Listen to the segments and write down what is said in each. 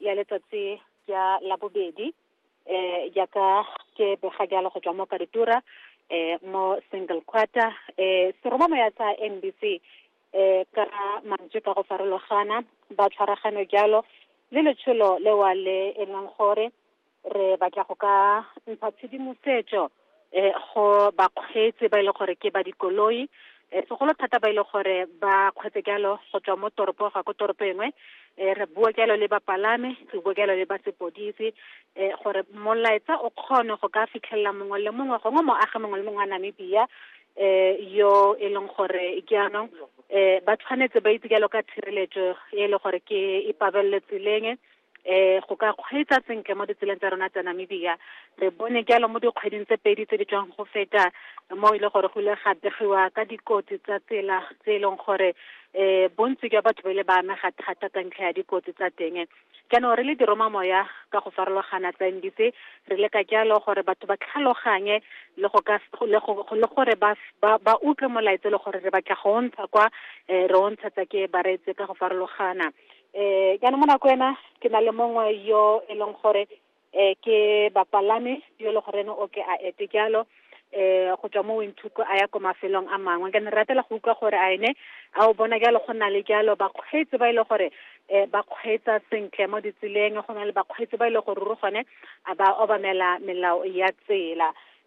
ya letsatsi ya labobedi um jaaka ke bega jalo go tswa mo karitura um mo single quarter um seromamoya sa n b c um ka mantswe ka go farologana ba tshwaragano jalo le letsholo lewa le e leng gore re batla go ka ntsha tshedimosetso um go bakgweetsi ba e le gore ke ba dikoloi um segolo thata ba e le gore ba kgweetse jalo go tswa mo toropo ga ko toropo engwe um re bua jalo le bapalami re bua jalo le ba sepodisi um gore molaetsa o kgone go ka fitlhelela mongwe le mongwe gongwe moagi mongwe le mongwe wa namibia um yo e leng gore jaanong um ba tshwanetse ba itse jalo ka tshireletso e le gore ke e pabelelo tseleng eh go ka kgweetsa sentle mo ditseleng tsa rona tsa Namibia re bone jalo mo dikgweding tse pedi tse di tswang go feta mo e le gore go ile ga begiwa ka dikotsi tsa tsela tse e leng gore eh bontsi jwa batho ba ile ba amega thata ka ntlha ya dikotsi tsa teng jaanong re le diroma moya ka go farologana tsa NDC re leka jalo gore batho ba tlhaloganye le go ka le gore ba ba utlwe molaetsa le gore re batla go ntsha kwa eh, re o ntshetsa ke bareetse ka go farologana eh jaanong mo nako ena ke na le mongwe yo e leng gore eh ke bapalame yo le gore o ke a ete jalo eh go tswa mo winthuko a ya ko mafelong a mangwe ke ne ratela go utlwa gore a ene a o bona jalo go na le jalo bakgweetsi ba e le gore eh ba kgweetsa sentle mo ditseleng go na le bakgweetsi ba e le gore ruri gone a ba obamela melao ya tsela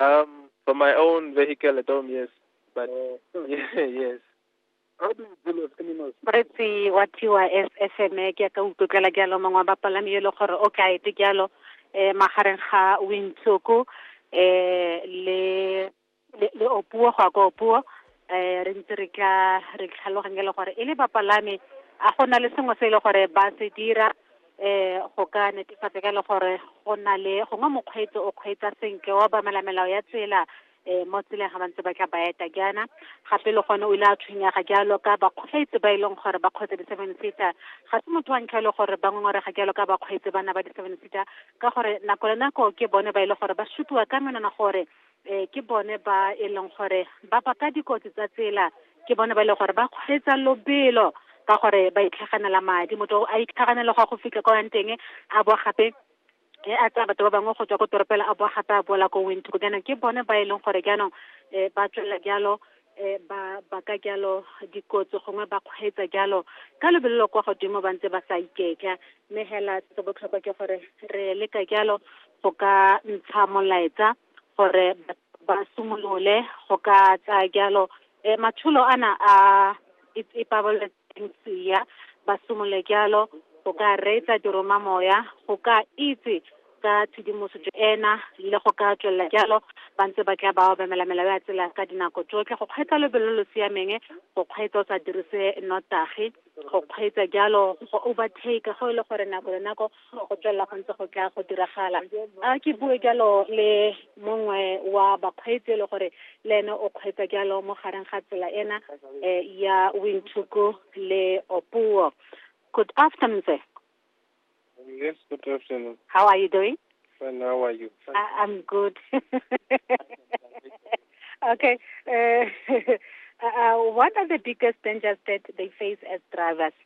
Um, for my own vehicle at home, yes. But oh. yes. How do you deal with animals? Bretsi wa TYS SME ke ka utlwela jalo mongwe wa bapalami yo le gore o ka ete jalo eh magareng ga Wintsoku eh le le opuo go ka opuo eh re ntse re tla re tlhaloganya le gore e le bapalami a gona le sengwe se e le gore ba se dira eh go ka netefatsa ka le gore go na le gongwe mokgweetsi o kgweetsa senke wa bamela melao ya tsela eh mo tseleng ga bantse ba tla ba eta jaana gape le gone o ile a tshwenyega jalo ka bakgweetsi ba e leng gore ba kgweetsa di-seven seater ga se motho wa ntlha e le gore ba ngongorega jalo ka bakgweetsi bana ba di-seven seater ka gore nako le nako ke bone ba e le gore ba supiwa ka menwana gore um ke bone ba e leng gore ba baka dikotsi tsa tsela ke bone ba e leng gore ba kgweetsa lobelo ka gore ba itlhaganela madi motho a itlhaganela go ya go fitlha ko yang teng a bo gape e a tsaya batho ba bangwe go tswa ko toropela a boa gape a boela ko windhoek jaanong ke bone ba e leng gore jaanong um ba tswelela jalo eh, ba baka jalo dikotsi gongwe ba kgweetsa jalo ka lebelelo kwa godimo ba ntse ba sa iketla mme hela se botlhokwa ke gore re leka jalo go ka ntsha molaetsa gore ba simolole go ka tsaya jalo um matsholo ana a ipabaletse Lucia, ba simolole jalo, go ka reetsa diromamoya, go ka itse ka tshedimosetso ena, le go ka tswelela jalo, ba ntse ba tla ba obamela melao ya tsela ka dinako tsotlhe, go kgweetsa lobelo lo lo siameng, go kgweetsa o sa dirise nnotagi, go kgweetsa jalo, go overtake go e le gore nako le nako go tswelela go ntse go tla go diragala a ke bue jalo le mongwe wa bakgweetsi e le gore le ene o kgweetsa jalo mo gareng ga tsela ena eh, ya winthuku le opuo good afternoon sir Yes, good afternoon. how are you doing Fine, how are you? I, i'm good okay uh, uh, what are the biggest dangers that they face as drivers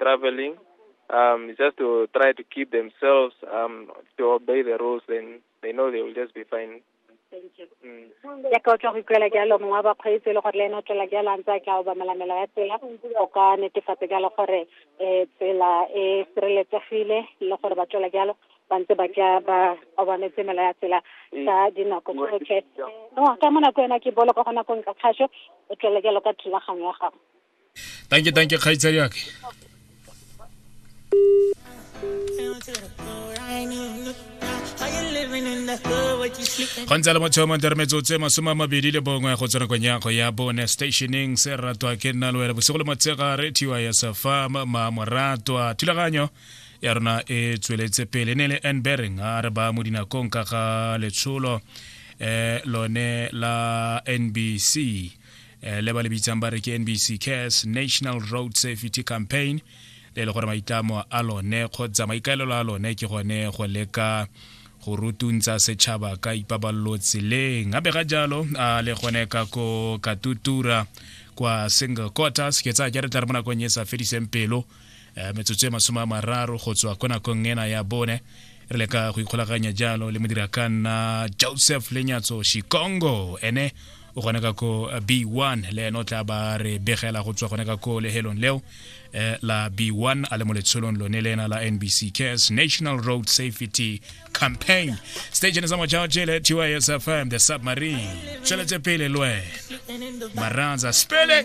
traveling, um, it's just to try to keep themselves um, to obey the rules. Then they know they will just be fine. Thank you. Mm. yaka o tswa go ikuela jalo mongwe wa bakgweetsi e le gore le ene o tswela jalo a ntse a tla o bamelamela ya tsela o ka netefatsa jalo gore um tsela e sireletsegile le gore ba tswela jalo ba ntse ba tla ba obametse mela ya tsela ka dinako tsotlhe no ka mo nako ena ke bolo ka go nako nka kgaso o tswela jalo ka thulaganyo ya gago thank you thank you kgaitsadi yake go ntse le motho mo nteremetsotso tse masome a mabedi le bongwe go tsena konyago ya bone stationeng se ratwa ke nna le wena bosigo le motshegare tiwa ya safam mamoratwa thulaganyo ya rona e tsweletse pele ne le enbering a re ba mo dinakong ka ga letsholo eh, lone la nbc eh, le ba le bitsang ba re ke nbc cares national road safety campaign le e le gore maitlamo a lone kgotsa maikaelelo a lone ke gone go leka go rutuntsa setšhaba ka ipaballo tseleng gape ga jalo a le gone ka ko katutura kwa single quarters ke tsaya ke re tla re mo nakong e sa fediseng pelo eh, metsotso e masome a mararo go tswa ko nakong ena ya bone re le ka go ikgolaganya jalo le modira ka nna joseph lenyatso shikongo ene o gone ka ko eh, b1 le ene o tla ba re begela go tswa gone ka ko lehelong leo eh, la b1 a le mo letsholong lone le ena la nbc cares national road safety campaign station sa mochaoche le tysfm the submarine tsweletse pele le wena maranza spele